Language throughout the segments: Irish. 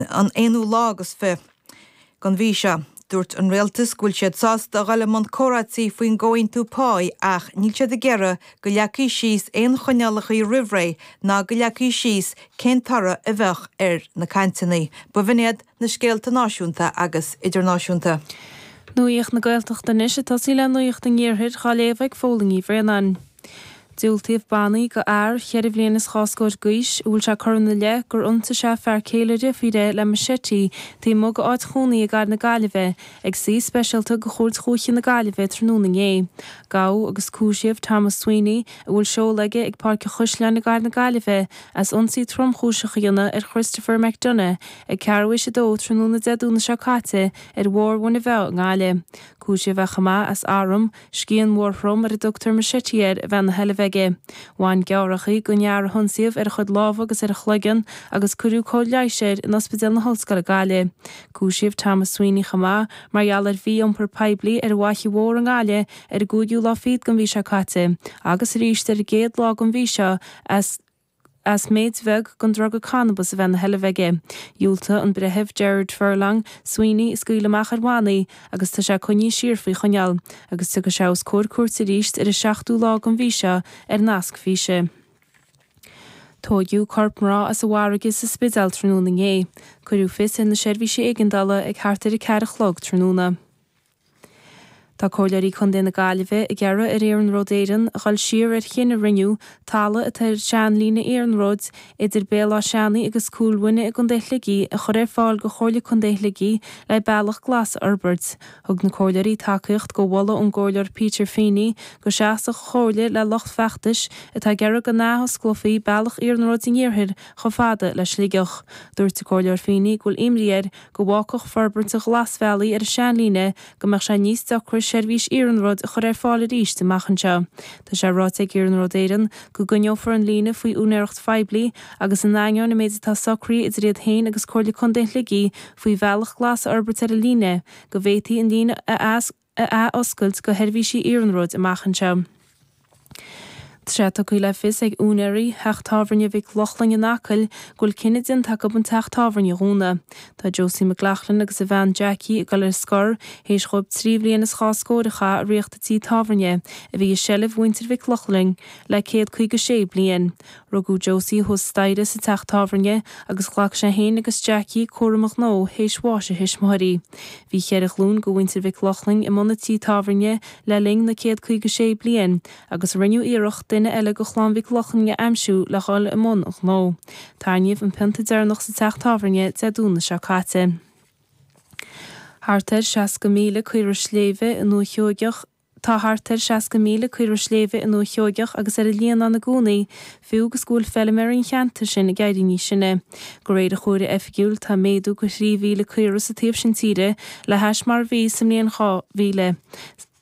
an aonú lá agus fiche den mhí seo. Dúirt an Rialtas go bhfuil siad sásta dul i mbun comhráití faoin gComhaontú Pá ach níl siad ag iarraidh go leagfaí síos aon choinníollacha roimhré ná go leagfaí síos cén toradh a bheadh ar na cainteanna b'in iad na scéalta náisiúnta agus idirnáisiúnta. Nuaíocht na Gaeltachta Anois ag tosaí le Nuaíocht an Iarthair, dhá léamh ag Fódhla Ní Bhraonáin. Diúltaíodh bannaí go fhear cheithre bhliain is dhá scóir d'aois, a bhfuil sé curtha ina leith gur ionsaigh sé fear céile a dheirféar le machete taobh amuigh dá áit chónaí i gcathair na Gaillimhe, ag suí speisialta go Chúirt Dhúiche na Gaillimhe tráthnóna inné. Gabhadh agus cúisíodh Thomas Sweeney, a bhfuil seoladh aige ag Páirc an Chaisleáin i gcathair na Gaillimhe, as ionsaí tromchúiseach a dhéanamh ar Christopher McDonagh ag ceathrú théis a dó tráthnóna Dé Domhnaigh seo caite ar Bhóthar Mhuine Mheá i nGaillimh. Cúisíodh é chomh maith as arm, Scian mhór throm ar a dtugtar machete air a bheith ina sheilbh aige. Bhain gearrthachaí gon fhear a hionsaíodh ar a chuid lámha agus ar a chloigeann agus cuireadh cóir leighis air in Ospidéal na hOllscoile Gaillimhe. Cúisíodh Thomas Sweeney chomh maith mar gheall ar mhí-iompar poiblí ar an bhFaiche Mhór i nGaillimh ar an gcúigiú lá fichead den mhí seo caite agus arís ar an gcéad lá den mhí seo as as méid bheag den druga cannabas a bheith ina sheilbh aige. Dhiúltaigh an Breitheamh Gerard Furlong, Sweeney a scaoileadh amach ar bhannaí agus tá sé coinnithe siar faoi choinneáil, agus tiocfaidh sé os comhair cúirte arís ar an 7ú lá den mhí seo ar nasc físe. Tóigeadh corp mná as an bhfarraige sa Spidéal tráthnóna inné. Cuireadh fios ar na seirbhísí éigeandála ag thart ar a ceathair a chlog tráthnóna. Tá Comhairleoirí Contae na Gaillimhe ag iarraidh ar Iarnród Éireann a dhul siar ar chinneadh a rinneadh talamh atá ar sheanlíne iarnróid idir Béal Átha Seanaidh agus Cúil Mhuine i gContae Shligigh a chur ar fáil go Chomhairle Contae Shligigh le bealach glas a fhorbairt. Thug na Comhairleoirí tacaíocht go mholadh ón gComhairleoir Peter Feeney go seasfadh an Chomhairle le lucht feachtais atá ag iarraidh go n-athosclófaí bealach iarnróid an iarthair chomh fada le Sligeach. Dúirt an Comhairleoir Feeney go bhfuil imní air go bhfágfadh forbairt an ghlasbhealaigh ar an seanlíne go mbeadh sé níos deacra seirbhís iarnróid a chur ar fáil arís amach anseo. Tá sé ráite ag Iarnród Éireann go gcoinneofar an líne faoi úinéireacht phoiblí agus in ainneoin an méid atá socraithe idir iad féin agus Comhairle Contae Shligigh faoi bhealach glas a fhorbairt ar an líne go bhféadfaí an líne a a athoscailt go sheirbhísí iarnróid amach anseo. Tá sé tugtha le fios ag úinéirí theach tábhairne Mhic Lochlainn in Acaill go bhfuil cinneadh déanta acu an teach tábhairne a dhúnadh. Tá Josie McLaughlin agus a bhean Jackie ag dul ar scor théis dhóibh trí bhliain is dhá scór a chaitheamh ag ritheacht an tí tábhairne, a bhí i seilbh mhuintir Mhic Lochlainn le céad caoga sé bliain. Rugadh Josie thuas staighre sa teach tábhairne agus ghlac sé fhéin agus Jackie cúram a ghnó théis bháis a thuismitheoirí. Bhí cheithre ghlúin de mhuintir Mhic Lochlainn i mbun a tí tábhairne le linn na céad caoga sé bliain agus rinneadh iarracht duine eile de chlann Mhic Lochlainn a aimsiú le dhul i mbun an ghnó. Tarraingíodh an pionta deireanach sa teach tábhairne Dé Domhnaigh seo caite. Thart ar 60,000 caora sléibhe i nDúiche Sheoigheach a. Tá thart ar 60,000 caora sléibhe i nDúiche Sheoigheach agus ar an Líonán i gcónaí, fiú agus go bhfuil feilméaraí an cheantair sin ag éirí níos sine. De réir an chomhairimh oifigiúil, tá méadú de 3,000 caora sa taobh sin tíre le hais mar a bhí sa mbliain 2000.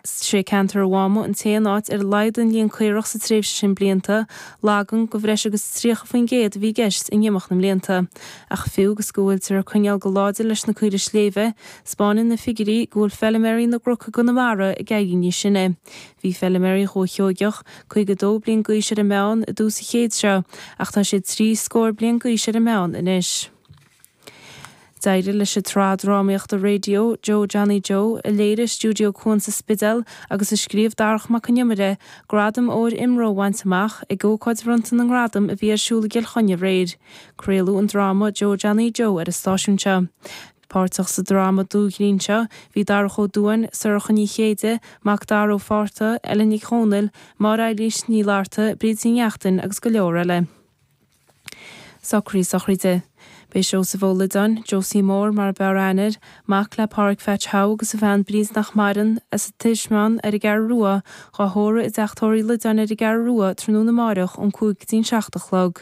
Is é ceantar an Mháma an t-aon áit ar laghdaigh an líon caorach sa tréimhse sin blianta, lagan de bhreis agus 30% a bhí i gceist in imeacht na mblianta, ach fiú agus go bhfuiltear ag coinneáil go láidir leis na caoirigh sléibhe, 'Spáineann na figiuirí go bhfuil feilméaraí na gcnoc i gConamara ag éirí níos sine. Bhí feilméaraí Dhúiche Sheoigheach 52 bliain d'aois ar an meán i dtús an chéid seo ach tá siad trí scóir bliain d'aois ar an meán anois. D'éirigh leis an tsraith drámaíochta raidió Joe Johnny Joe, a léirigh Stiúideo Cuan sa Spidéal agus a scríobh Darach Mac Con Iomaire, gradam óir IMRO a bhaint amach ag ócáid bhronnta na ngradam a bhí ar siúl i gCill Chainnigh aréir. Craoladh an dráma Joe Johnny Joe ar an stáisiún seo. Páirteach sa dráma dúghrinn seo bhí Darach Ó Dubháin, Sorcha Ní Chéide, Macdara Ó Fátharta, Ellen Nic Dhomhnaill, Máire-Eilís Ní Fhlatharta, Bríd Ní Neachtain agus go leor eile. Socruithe sochraide. Beidh Seosamh Ó Loideáin, Josie Mór mar a b'fhearr aithne air, mac le Páraic Pheaits Howe agus a bhean Bríd nach maireann, as an Tismeáin ar an gCeathrú Rua, dhá thórramh i dteach tórraimh Uí Loideáin ar an gCeathrú Rua tráthnóna amáireach ón cúig go dtí'n seacht a chlog.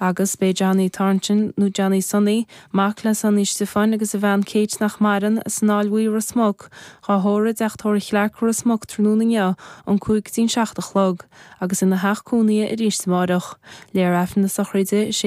Agus beidh Johnny Thornton, nó Johnny Sonaí, mac le Sonaí Stiofáin agus a bhean Kate nach maireann, as an Aill Bhuí Ros Muc, dhá thórramh i dteach tórraimh Chlarke Ros Muc tráthnóna inniu ón cúig go dtí'n seacht a chlog, agus ina theach cónaithe arís amáireach. Léifear Aifreann na sochraide, is é